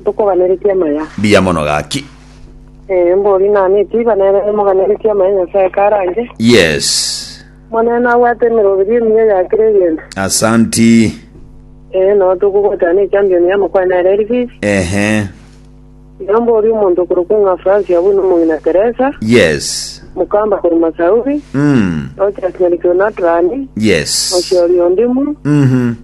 Ntokoganeretie amaya. Mbuya mono gaki. Ee, mbori nane etiba nere nimoganeretie amaya Nyasae karanche. Yes. Omonene abwate emeroberio emiya ya kera egento. Asanti. Ee, nao tokogotana echampion y'amakwana ere eri Fifi. Ehe. Iga mbori omonto okorokwa ng'a Fransi abwo nomong'ina Teresa, Yes. mokamba korwa Masauri, Mm. Rochas Nyaricho Natrani, Yes. Oshori Ondimu, Mhm.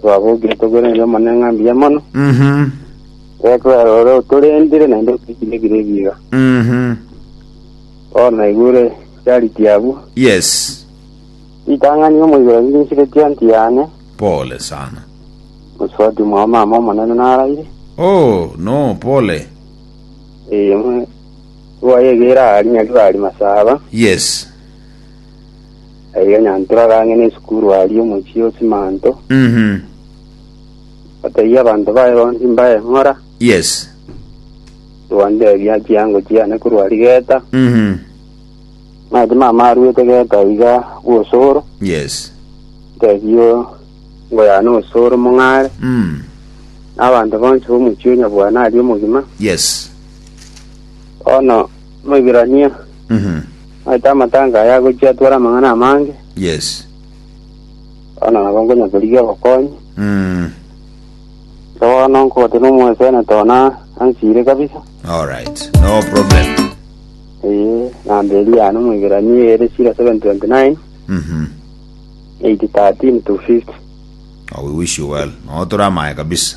twabogire tobereire Omonene ng'a mbuya mono, Mhm. ekwera ore otorendire naende otochirekire ebiira. Mhm. Bono naigure charity abwo, Yes. ritang'ani omoibero rinsire tionti yane, Pole sana. mosubati mwa omama omonene naraire, Oh, no, pole. eye mwe rwayegera aria nyari bari masaba, Yes. Erio Nyantura akang'ina esukuru aria omochie o Simanto, Mhm. ateebia abanto baye bonsi mbae ng'ora, Yes. Twandeebia chiango chiane korwa aria Geta, Mhm. ng'a timama aruete Geta iga bw'osoro, Yes. nteebio ngoyane osoro mong'are, Mm. na abanto bonsi b'omochie o Nyabwana aria omogima, Yes. bono Omoibirania, Mhm. naete amatango aya agochia atware amang'ana amange, Yes. bono nabo nkonya korigia obokonyi. Mm. Igo bono nkogotebia nomwesenete one ansire kabisa. All right. No problem. Eye, namba eria yane Omoibirania ere 0729 Mhm. 813 250. Oh, we wish you well. No tore amaye kabisa.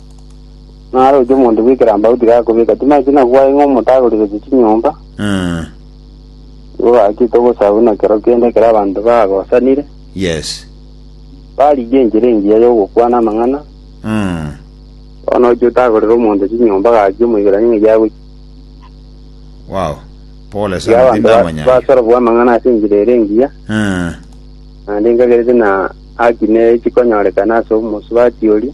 Naroche omonto bw'ekerambau tigakobeka chimai chuna gwaye ng'a omotagori gochia chinyomba, Mm. nigo gachete ogosabu na kero kende ekero abanto bagosanire, Yes. barigia enchera engiya y'ogokwana amang'ana, Mm. bono ochia otagorera omonto chinyomba gaki omoikeranie ng'a giagochia. Wow. Pole Iga sana abanto ba- tindamanya. basorobwa amang'ana ase enchera ere engiya, Mm. naende nkagerete na haki ne chikonyorekana ase omosubati oria.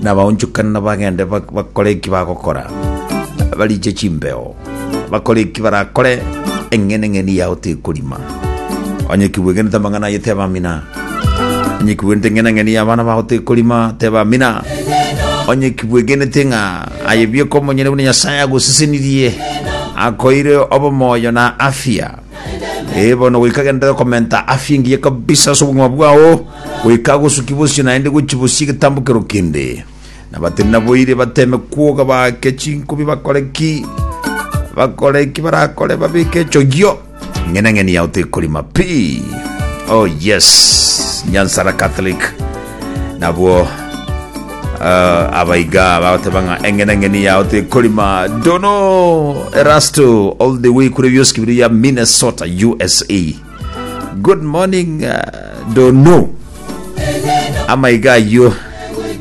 nabaonchokane nabagende bak- bakore eki bagokora bariche chimbeo bakore eki barakore eng'ene eng'eni yao tekorima onye kibwegenete amang'ana aye tebamina onye kibwegenete eng'ene eng'eni y'abana bao tekorima tebamina onye kibwegenete ng'a aye bieka omonyene buna nyasaye agosesenirie akoire obomoyo na afya Eh, bono goika genda komenta afya engiya kabisa ase obogima bwao goika agosuki bosio naende gochi bosia egetambokero kende na batiri naboire bateme kwoga baake chinkubi bakore ki bakore ki barakore babike echogio ng'enang'eni yao tekorima pi oh yes nyansara catholic nabwo ah, abaiga bagoteba ng'a eng'enang'eni yao tekorima dono erasto all the way kure bioski biri ya minnesota usa good morning uh, dono amaiga ayio